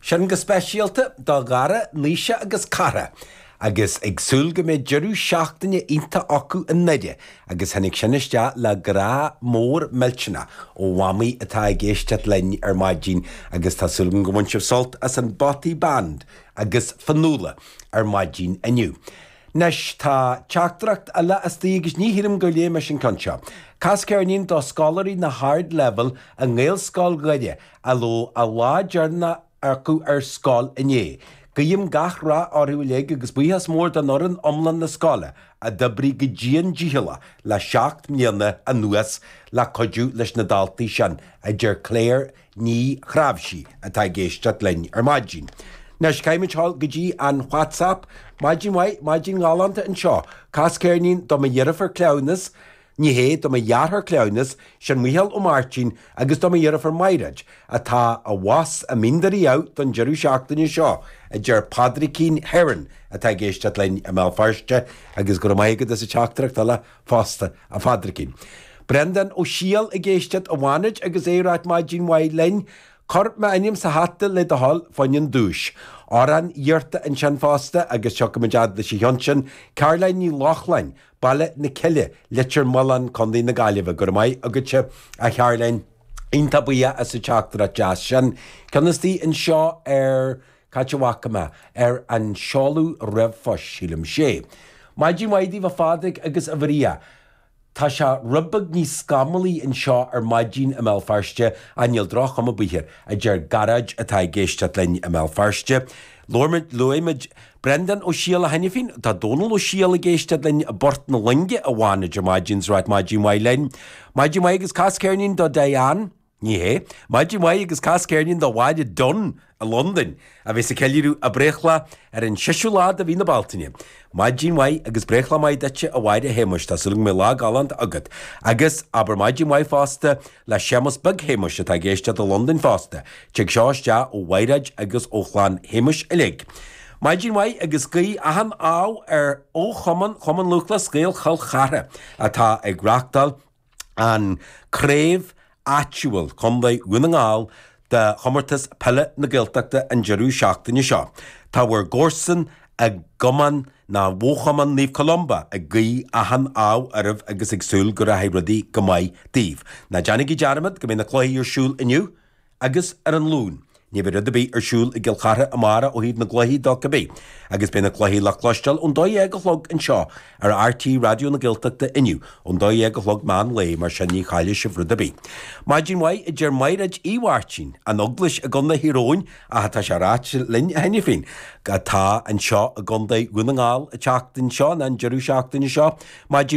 sin go speisialta do Ghara, Naoise agus Cara agus ag súil go mbeidh deireadh seachtaine iontach acu i nDoire agus tháinig sin isteach le grá mór millteanach ó Mhamaí atá ag éisteacht linn ar maidin agus tá súil agam gur bhain sibh sult as an Bothy Band agus Fionnuala ar maidin inniu. Anois tá teachtaireacht eile istigh agus ní shílim gur léigh mise an ceann seo. Cas ceirnín do scoláirí na hArdleibhéal i nGaelcholáiste Dhoire a raibh a lá deireanach acu ar scoil inné. Guím gach rath orthu uilig agus buíochas mór d'fhoireann iomlán na scoile a d'oibrigh go dian dícheallach le seacht mbliana anuas le cuidiú leis na daltaí sin, a deir Claire Ní Chráibhsí atá ag éisteacht linn ar maidin. Anois, caithfimid dul go dtí an WhatsApp. Maidin mhaith, maidin ghalánta anseo. Cas ceirnín do mo dheirfiúr cleamhnais. Ní hé do mo dheartháir cleamhnais sin Micheál Ó Máirtín agus do mo dheirfiúr Maighreád, atá abhus i mBinn Éadair don deireadh seachtaine seo, a deir Pádraicín Heron atá ag éisteacht linn i mBéal Feirste agus go raibh maith agat as an teachtaireacht eile fosta, a Phádraicín. Brendán Ó Siadhail ag éisteacht i bhFánaid agus é ag ráit Maidin mhaith linn. Cuir m'ainm sa hata le do thoil, fá choinne an duais. Amhrán iarrtha ansin fosta agus tiocfaimid fhad leis an cheann sin, Caroline Ní Lochlainn, Baile na Cille, Leitir Mealláin, Co na Gaillimhe. Go raibh maith agatsa, a Charoline. Iontach buíoch as an teachtaireacht deas sin. Ceann istigh anseo ar, cá háit a bhfaca mé ar an seoladh riomhphoist, sílim, sea. Maidin mhaith daoibh a Phádraig agus a Mharia. Tá sé rud beag níos scamallaí anseo ar maidin i mBéal Feirste ach níl droch-chuma air, a deir Gearóid atá ag éisteacht linn i mBéal Feirste. Luaigh muid, luaigh muid. Breandán Ó Siadhail. Anois féin, tá Dónal Ó Siadhail ag éisteacht linn i bPort na Loinge i bhFánaid ar maidin, is é ag ráit maidin mhaith linn. Maidin mhaith agus cas ceirnín do Dan? Ní hea. Maidin mhaith agus cas ceirnín do Mhaurice Dan i Londain, a bheas ag ceiliúradh a breithlá ar an séú lá de mhí na Bealtaine. Maidin mhaith agus breithlá maith duitse a Mhaurice Shéamuis, tá súil agam go mbeidh lá galánta agat. Agus, abair maidin mhaith fosta, le Séamus Beag Shéamuis atá ag éisteacht i Londain fosta. Tig seo isteach ó Mhaighreád agus ó chlann Shéamuis uilig. Maidin mhaith agus guí achan ádh ar fhochumann Chumann Lúthchleas Gael Chill Chartha atá ag reachtáil an craobh áitiúil Chontae Dhún na nGall de Chomórtas Peile na Gaeltachta an deireadh seachtaine seo. Tá bhur gcomharsain i gcumann nó i bhfochumann Naomh Columba ag guí achan ádh oraibh agus ag súil go rachaidh rudaí go maith daoibh. Ná déanaigí dearmad go mbeidh na cluichí ar siúl inniu agus ar an Luan. Ní bheidh rud ar bith ar siúl i gCill Chartha amárach ó thaobh na gcluichí de, cibé agus beidh na cluichí le cloisteáil ón dó dhéag a chlog anseo ar RTÉ Raidió na Gaeltachta inniu ón dá dhéag a chlog meán lae mar sin ní chaillfidh sibh rud ar bith. Maidin mhaith a deir Mairéad Uí Mháirtín, an Eaglais i gContae Thír Eoghain ach tá sé ráite linn í féin atá anseo i gContae Dhún na nGall an tseachtain seo, an deireadh seachtaine seo. Maidin.